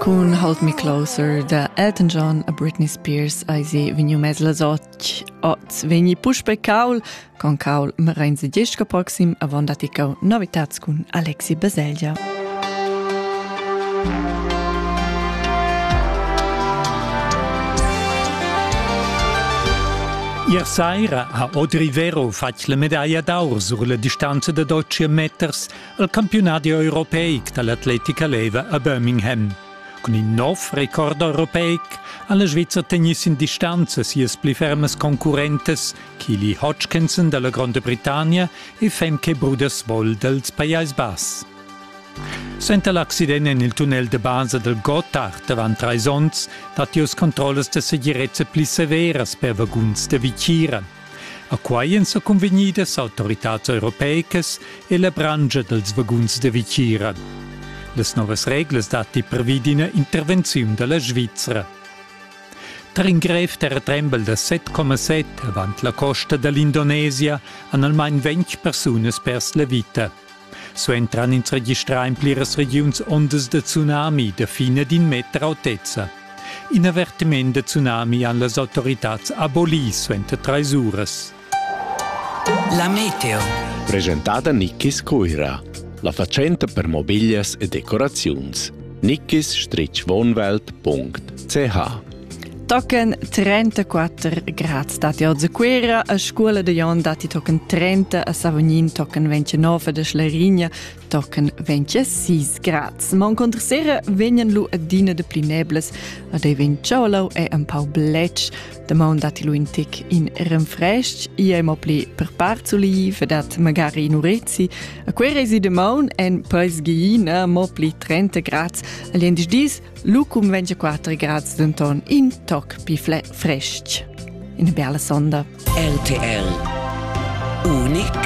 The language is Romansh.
Cun Hold Me Closer da Elton John a Britney Spears eisi vegniu mess las otg. Oz vegni puspe caul con caul Merenze Dieschka proxim avon daticau novitads cun Alexi Baselgia. Ier saira ha Audrey Vero fatg la medaglia d'aur sur la distanza da 12 meters il campiunadi europeic dall'atletica leva a Birmingham. Cun in nov record europeic ha la Sviza tegni sin distanza sias pli fermas concurrentes Kili Hodgkinson dalla Gronda Britannia e Femke Bruders-Woll dels Pajais Bass. Senta l'accident en il tunnel de basa del Gotthard avant treis onns dat jos controllas de segirezza pli severas per vaguns de Vicira. A quai èn sa cunvegnidas autoritads europeicas e la branscha dals vaguns da vitgira. Las novas reglas datti pervi d'ina intervenziun da la Svizra. Tar in grev terratrembel da 7,7 avant la costa da l'Indonesia han almain ventg persunas pers la vita. Suentran ins registrà en pliras regiuns ondas da tsunami da fina d'in meter autezza. In avertiment da tsunami han las autoritads abolì suenter trais uras. La meteo. Presentada Nickis Cuira. La fatschenta per mobiglias e decoraziuns. Nickis-wohnwelt.ch Tochen 34 grads datti oz a Cuera, a scola de Jon datti tochen 30, a Savognin tochen 29 de Schlarigna tochen 26 grads. Ma uncontra sera vegnan lu adina de pli nebles, ad ei vegn tschaulau e empau bletsch. De maun datti lu in tic in renfresc, i ei mo pli per part suliv, dat magari in urezi. A Cuera esi de maun en peis giina, mo pli 30 grads. Agli endis dis Lu cunvegn quater grads denton in toc pli frestg. Ina bella sonda. RTL Unic